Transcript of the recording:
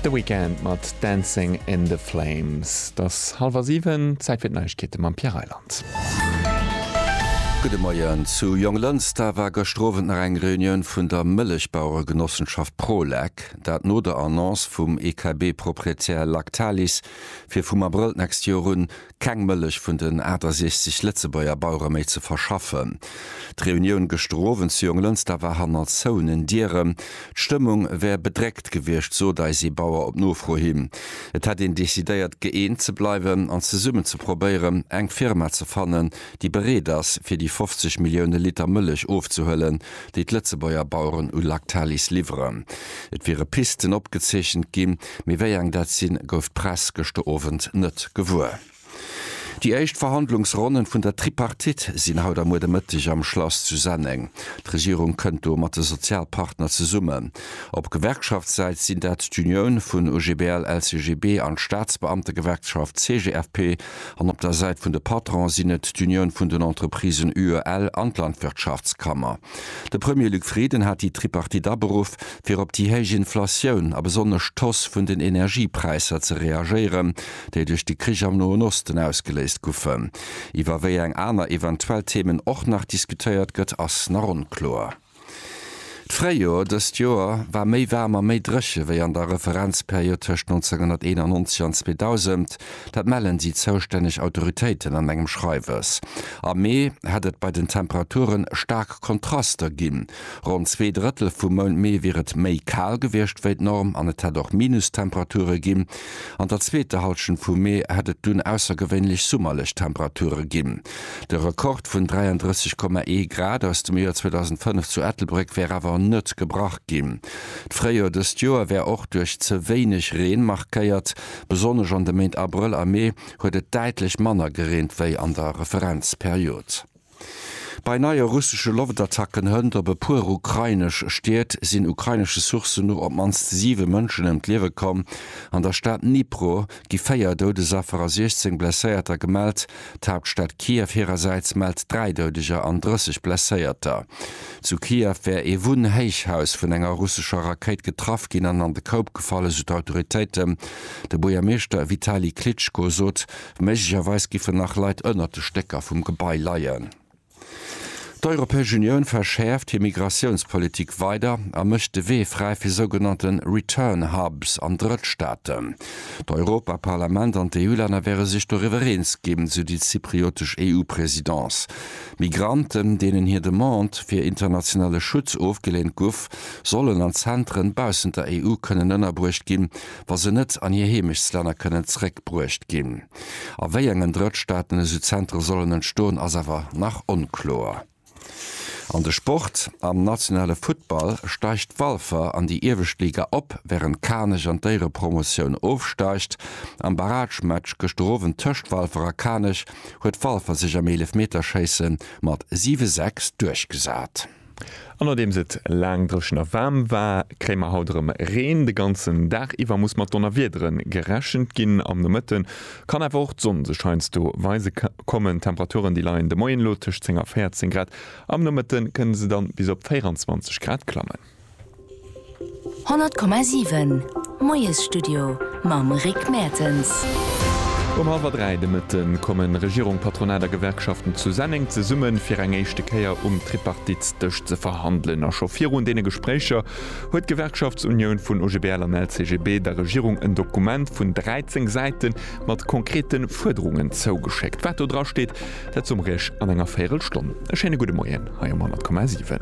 The Weeknd mat Dancing in the Flames. Et ass hallwer siwen, Zäit fir d'Neiegkeete mam Pierre Reyland. Gudde Moien. Zu Jonglënster war gëschter Owend nach eng Reunioun vun der Mëllechbaueregenossenschaft Prolec. Dat no der Annonce vum EKB-Proprietär Lactalis, fir vum Abrëll d'nächst Joer un keng Mëllech vun den 68 Lëtzebuerger Bauere méi ze verschaffen. D'Reunioun gëschter Owend zu Jonglënster war hanner zouenen Dieren. D'Stëmmung wär bedréckt gewiescht, sot eis ee Bauer op Nofro hin. Et hätt een decidéiert, gëeent ze bleiwen an zesummen ze probéieren, eng Firma ze fannen, déi bereet ass, fir déi 50 Millioune Liter Mëllech ofzehuelen, déi d'Lëtzebuerger Baueren u Lactalis liwweren. Et wiere Pisten opgezeechent ginn. Mee wéi eng dat sinn, gouf d'Press gëschter Owend net gewuer. Déi éischt Verhandlungsronnen vun der Tripartite sinn haut a muer de Mëtteg am Schlass zu Senneng. D'Regierung kënnt do mat de Sozialpartner zesummen. Op Gewerkschaftssäit sinn dat d'Unioun vun OGBL, LCGB an d'Staatsbeamtegewerkschaft CGFP an op der Säit vun de Patrone sinn et d'Unioun vun den Entreprisen UEL an d'Landwirtschaftskammer. De Premier Luc Frieden hat déi Tripartite aberuff, fir op déi héich Inflatioun a besonnesch d'Hausse vun den Energiepräisser ze reagéieren, déi duerch de Krich am Noen Osten ausgeléist goufen. Iwwer wéi eng aner eventuell Themen och nach diskutéiert gëtt, ass nach onkloer. D'Fréijoer dëst Joer war méi waarm a méi dréche wéi an der Referenzperiod tëscht 1991 an 2000, Dat mellen déi zoustänneg Autoritéiten an engem Schreiwes. Am Mee hätt et bei den Temperature staark Kontraster ginn. Ronn zwee Drëttel vum Mount Mee wier et méi kal gewiescht wéi d'Norm an et hätt och Minustemperature ginn. An der zweeter Hallschent vum Mee hätt et dunn aussergewéinlech summerlech Temperature ginn. De Rekord vun 33,1 Grad aus dem Joer 2005 zu Ettelbréck wär awer net gebrach ginn. D'Fréijoer dëst Joer wär och duerch ze wéineg Reen markéiert. Besonnesch an de Méint Abrëll a Mee huet et däitlech manner gereent wéi an der Referenzperiod. Bei neie russesche Loftattacken hënt op e puer ukrainesch Stied sinn ukrainesche Sourcen no op d'mannst siwe Mënschen ëm d'Liewe komm. An der Stad Dnipro gi véier Doudesaffer a 16 Blesséierter gemellt. D'Haaptstad Kiew hirersäits mellt 3 Doudeger an 30 Blesséierter. Zu Kiew wär ee Wunnhéichhaus vun enger russescher Rakéit getraff ginn an an de Koup gefall, esou d'Autoritéiten. De Buergermeeschter Vitali Klitschko sot, méiglecherweis géifen nach Leit ënnert de Stécker vum Gebai leien. D'Europäesch Unioun verschäerft hir Migratiounspolitik weider a mécht de Wee fräi fir sougenannte Return Hubs an Drëttstaaten. D'Europaparlament an d'EU-Länner wäre sech doriwwer eens ginn, sou déi zypriotesch EU-Presidence. Migranten, deenen hir Demande fir internationale Schutz ofgeleent guff, sollen an Zentren baussent der EU kënnen ënnerbruecht ginn, wa se net an hir Heemechtslänner kënnen zréckbruecht ginn. A wéi engen Drëttstaaten esou Zentere sollen entstoen, ass awer nach onkloer. An de Sport, Am nationale Futtball steigt Walfer an déi iewescht Liga op, wärend Kanech an d'Éierepromotioun ofsteigt. Am Barragematch gëschter Owend tëscht Walfer a Kanech huet Walfer sech am Eelefmeterschéisse mat 7, 6 duerchgesat. An nodeems et laang dréchen a waarm war, kréie mer haut erëm Reen. De ganzen Dag iwwer muss mat Donnerwiedere gerechent ginn. Am Nomëtte kann awer och d'Sonn sech heiansdo weise kommen. D'Temperaturen, déi leien de Moien elo tëscht 10 a 14 Grad, am Nomëtte kënne se dann bis op 24 Grad klammen. 100,7 Moiesstudio mam Rick Mertens. Um hallwer 3 de Mëtte kommen Regierung, Patronat a Gewerkschaften zu Senneng zesumme fir eng éischte Kéier um Tripartitsdësch ze verhandelen. A scho virun deene Gespréicher huet d'Gewerkschaftsunioun vun OGBL an LCGB der Regierung en Dokument vun 13 Säite mat konkrete Fuerderungen zougeschéckt. Wat do dra steet, dat soe mer Iech an enger Véierelstonn. E schéine gudde Moien hei um 100,7.